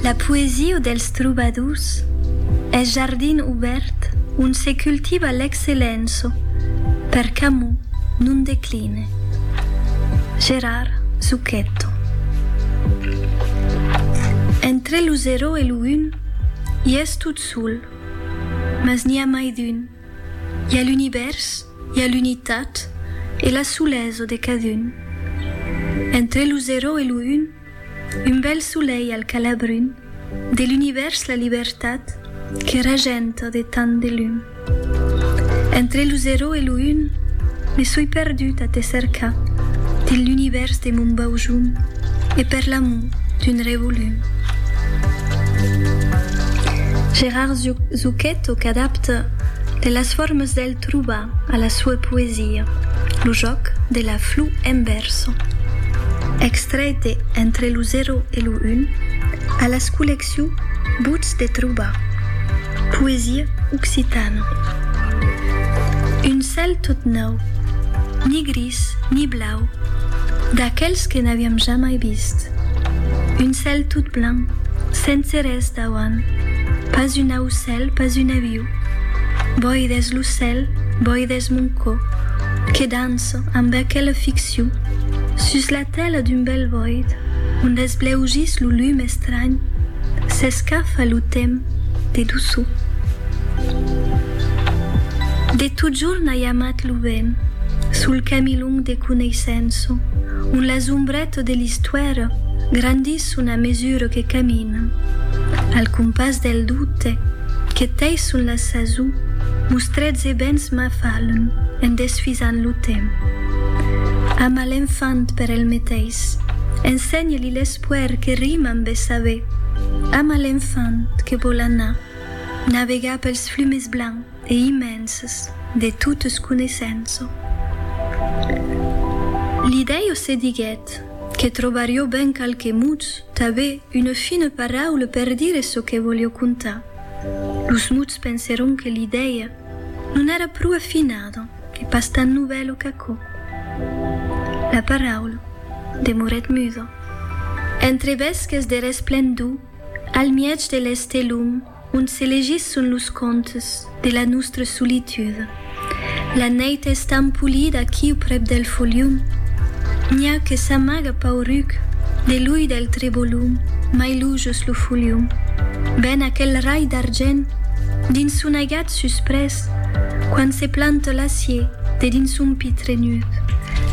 La poesia dels trobadors es jardin obèrt ont se cultiva l'excellença per qu'amor non decline. Gérard Zucchetto. Entre lo zero e lo un i es tot sol, mas n'i a mai d'un, i a l'univèrs, i a l'unitat e la solesa de cadun. Entre lo zero e lo un. Un bèl solelh al calabrun de l'univèrs la libertat que regenta de tant de lum entre lo zero e lo un me soi perdut a te cercar dins l'univèrs de mon baujum e per l'amor d'un revolum Gérard Zucchetto qu'adapta de las formas del Troba a la sua poesia lo jòc de la flu en verso. Extrèit de Entre lo zero e lo un, a las collecciu Buts de trobar. Poesia occitana. Un cèl tot nòu, ni gris ni blau, d'aquèls que n'aviam jamai vist. Un cèl tot blanc, sense res dauant, pas un aucèl, pas un aviu. Boides lo cèl, boides mon cò, que danço amb aquela ficcion sus la tèla d'un bèl boid ont esbleugís lo lum estranh, s'escafa lo temps de doçor. De totjorn ai amat lo vent, sul camilhon de coneissença, ont las ombretas de l'istuèra grandisson a mesura que camino. L'anima, al compàs del doute, que tei son la sason, mostrets e bens m'afalon en desfisant lo temps. Ama l'enfant per el meteis, ensenhe-li l'espoèr que rima amb e saber, ama l'enfant que vòl anar navegar pels flumes blancs e immenses de totes coneissenço. Li dèio se diguèt que trobarió ben qualques mots Tanben una fina paraula per dire çò que volió contar. Los muts pensèron que l'idèia non èra pro afinada, que pas tan novèla qu'aquò. La paraula demorèt muda. Entre bèsques de resplendor, al mièg de l'estelum, Ont se legisson los contes de la nustra solitud. La neit es tan polida aquiu prep del folium. N'i a que s'amaga pauruc de l'ull del trebolum mai lujos lo folium. Ven aquel rai d'argent dins son aigat susprés quand se planta l'acier de dins son pit trenut.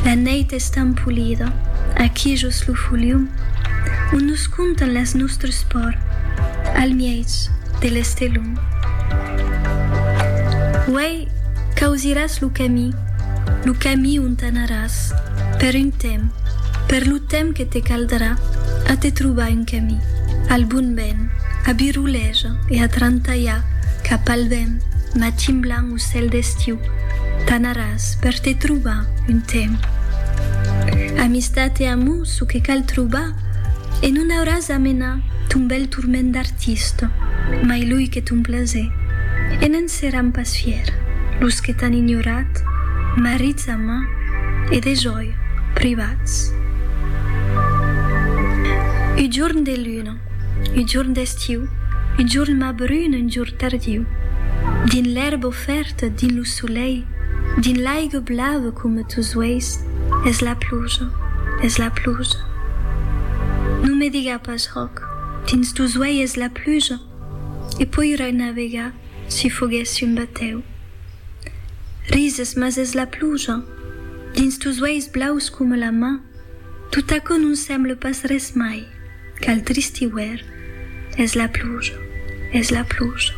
La neit es tan polida aqui jos lo folium. Ont nos. Contan las nòstres por. Al mièg de l'estelon. Uèi causiràs lo camí. Lo camí ont anaràs. Per un temps. Per lo temps que te caldrà. A te trobar un camí. Al bon vent. A biroleja e a trantalhar. Cap al vent. Matin blanc o cèl d'estiu. T'anaràs. Per te trobar un temps. Amistat e amor, ço que cal trobar. E non auràs a menar ton bèl turment d'artista, mai loi que ton plaser, e ne'n seràn pas fièr los que t'an ignorat, marrits a mà e dejòi privats. Un jorn de luna, un jorn d'estiu, un jorn mas brun, un jorn tardiu, dins l'èrba ofèrta, Quieta dins lo solelh, dins l'aiga blava coma tos uèis, es la pluja, es la pluja. Non me diga pas Ròc, dins tos uèi es la pluja, e poirai navegar si foguèssi un batèu. Rises, mas es la pluja, dins tos uèis blaus coma la mar, tot aquò non semble pas res mai qu'al trist iuèrn, es la pluja, es la pluja.